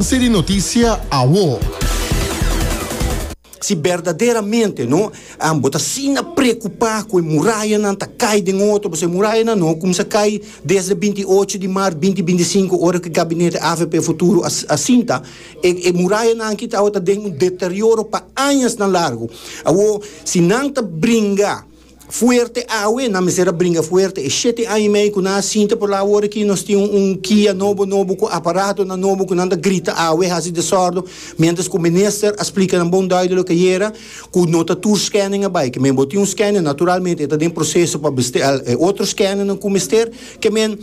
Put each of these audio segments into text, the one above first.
Seri di notisia awo. Si berdaderamente no bo ta asina preocupa cu e murayanan ta cay den otro, pasobra e murayanan no cuminsa cay desde binti y ocho di maart binti binti y cinco ora cu e gabinete AVP Futuro a sinta, e murayanan aki awo ta den un deterioro pa añasnan largo. Awor, si nan ta bringa. fuerte awe, nan mester a bringa fuerte. E shete aña i mei ku nan a sinta por la awor aki, nos tin un kia nobo nobo ku aparatonan nobo ku nan ta grita awe, hasi desòrdo, miéntras ku minister a splika nan bon dùido loke ayera ku no ta tur skèning a bai. Kemen bo tin un skèning, naturalmente e ta den proseso pa besteá e otro skèningnan ku mester. Kemen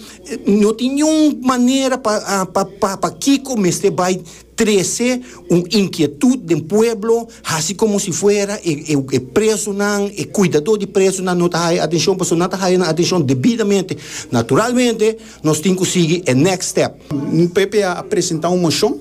no tin niun manera pa pa pa kiko mester bai. Trece, un inkietud den pueblo, hasi komo si fuera e e presonan, e kuidadó di presonan no ta haya atenshon, pasobra nan ta haya nan atenshon debidamente. Naturalmente, nos tin ku sigui e next step. PP a presentá un moshon,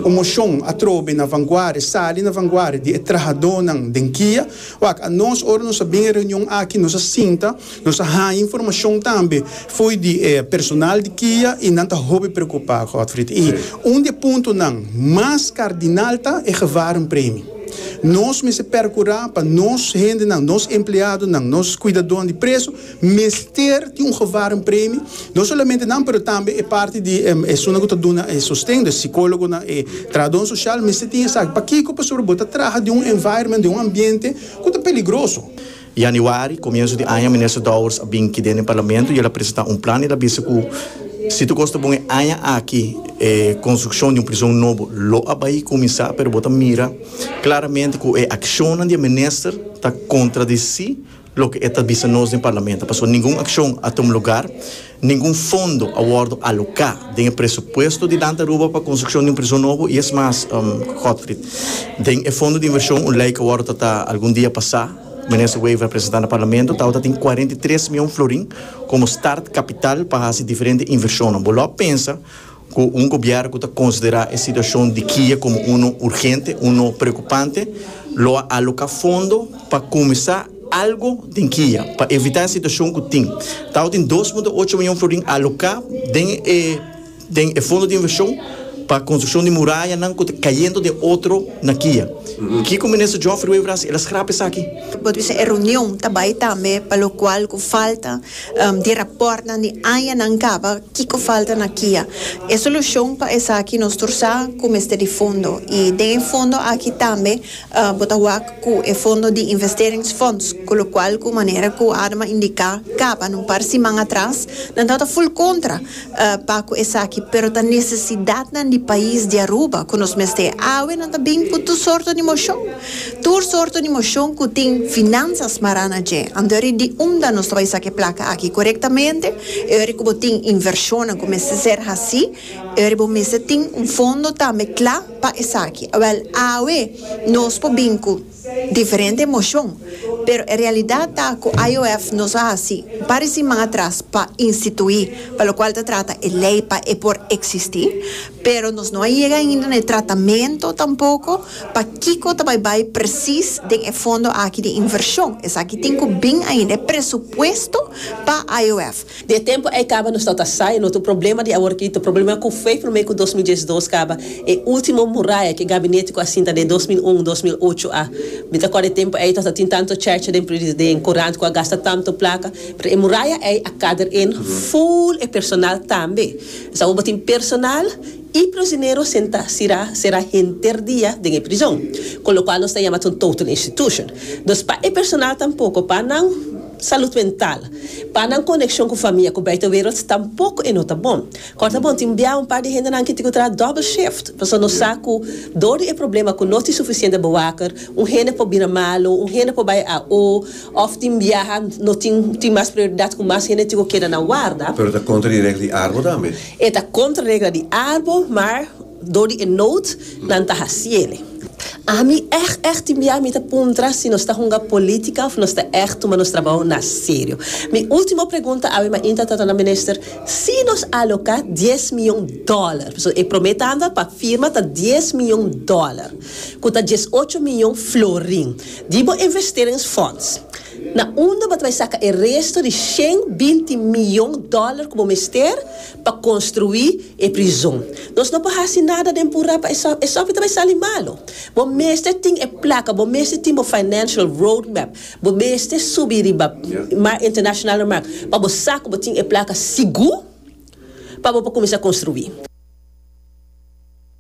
un moshon atrobe na vanguardia, sali na vanguardia di e trahadónan den kia. Wak, anos ora nos a bin e reunion aki, nos a sinta. Nos a haña informashon tambe fo'i di e personal di kia i nan ta hopi preokupá, Godfried. I un di e puntonan mas kardinal ta e gevarenpremi. Nos mester perkurá pa nos hendenan, nos empleadonan, nos kuidadonan di preso mester tin un gevarenpremi, no solamente nan pero tambe e parti di esunnan ku ta duna e sosten, e sikólogonan, e trahadónan sosial mester tin esaki. Pakiko? Pasobra bo ta traha den un environment, den un ambiente ku ta peligroso. Yanüari, komiensu di aña, Minister Dowers a bin ki den e Parlamento i el a presentá un plan. El a bisa ku si tur kos ta bon e aña aki e konstrukshon di un prison nobo lo a bai kuminsá, pero bo ta mira klaramente ku e akshonnan di e minister ta kontradisí loke e ta bisa nos den Parlamento. Pasobra ningun akshon a tuma lugar. Ningun fondo a wòrdu aloká den e presupuesto di Danta Aruba pa konstrukshon di un prison nobo i es mas, Godfried. Den e fondo di invershon un lei ku a wòrdu tratá algun dia pasá, Minister Wever a presentá na Parlamento, ta tabata tin kuarenta i tres mion florin komo start kapital pa hasi diferente invershonnan. Bo lo a pensa. Cu un gobier cu ta considera e situacion di Kiye como uno urgente, uno preocupante, lo a aloca fondo pa cuminsa algo den Kiye pa evita e situacion cu tin. Tawata tin dos punto ocho mion florin aloca den e den e fondo di inversion pa construccion di murayanan cu ta cayendo den otro na Kiye. Kico Minister Geoffrey Wever a haci? El a scrap esaki. Bo ta bisa e reunion ta bay tambe pa lo cual cu falta di rapòrtnan di añanan kaba kiko falta na kia e solushon pa esaki nos tur sa ku mester di fondo i den e fondo aki tambe bo ta wak ku e fondo di investeringsfonds ku lokual ku manera ku Adma indiká kaba na un par siman atras nan tabata ful kontra pa cu esaki, pero ta necesidadnan di pais di Aruba cu nos mester e awe, nan ta bin cu tur sorto di mocion, tur sorto di mocion cu tin finanzas smará na dje, antori di unda nos ta bay saca e placa aki corectamente, e ora cu bo tin inversionnan cu mester ser haci, e ora bo mester tin un fondo tambe cla pa esaki, awel awe nos por bin cu. diferente emoshon, pero e realidat ta ku IOF no sa hasi baris siman atras pa instituí, pa lokual ta trata e lei pa e por eksistí, pero nos no a yega ainda na e tratamentu tampoko pa kiko ta bai bai presis den e fondo aki di invershon, esaki tin ku bin ainda e presupuesto pa IOF. Di e tempu ei kaba nos no ta sa e lotu problema di awor kito. Problema ku fei promé ku dos mil diesdos kaba e ultimo muraya ku e gabinete ku a sinta den dos mil un, dos mil ocho a. Mi ta kòrda e tempu ei no ta tin tantu chècha den pri den kurant ku a gasta tantu plaka, pero e muraya ei a kader in full e personal tambe. Esei awor bo tin personal i prisionero sentá sirá será henter dia den e prizon, ku lokual nos ta yama ta un total institution. Dus pa e personal tampoko pa nan. Salud mental. Pa nan konekshon ku famia ku buitenwereld tampoko e no ta bon. Kòrta bon tin bia un par di hendenan ki tin ku traha dòbel shift, pasobra nos sa ku dor di e problema ku no tin sufisiente bewaker, un hende por bira malu, un hende por bai AO, òf tin biaha no tin tin mas prioridat ku mas hende tin ku keda na warda. Pero ta kontra di regla di arbo tambe. E ta kontra regla di arbo, maar. Dor di e nood nan ta haciele. Ami echt echt tin bia mi ta puntra si nos ta hunga politica of nos ta echt tuma nos trabao na serio. Mi ultimo pregunta awe mainta ta torna minister si nos aloca dies miyon dollar, pasobra e prome tanda pa firma ta dies miyon dollar cu ta dies ocho miyon florin di bo investerings fonds. Na unda bo ta bay saca e resto di shen binti miyon dollar cu bo mester? Pa construi e prizon. Nos no por haci nada den pura pa e sof, e sof e ta bay sali malo. Bo mester tin e placa, bo mester tin bo financial road map, bo mester subi riba mar internacional na mar pa bo sa cu bo tin e placa sigur pa bo por cuminsa construi.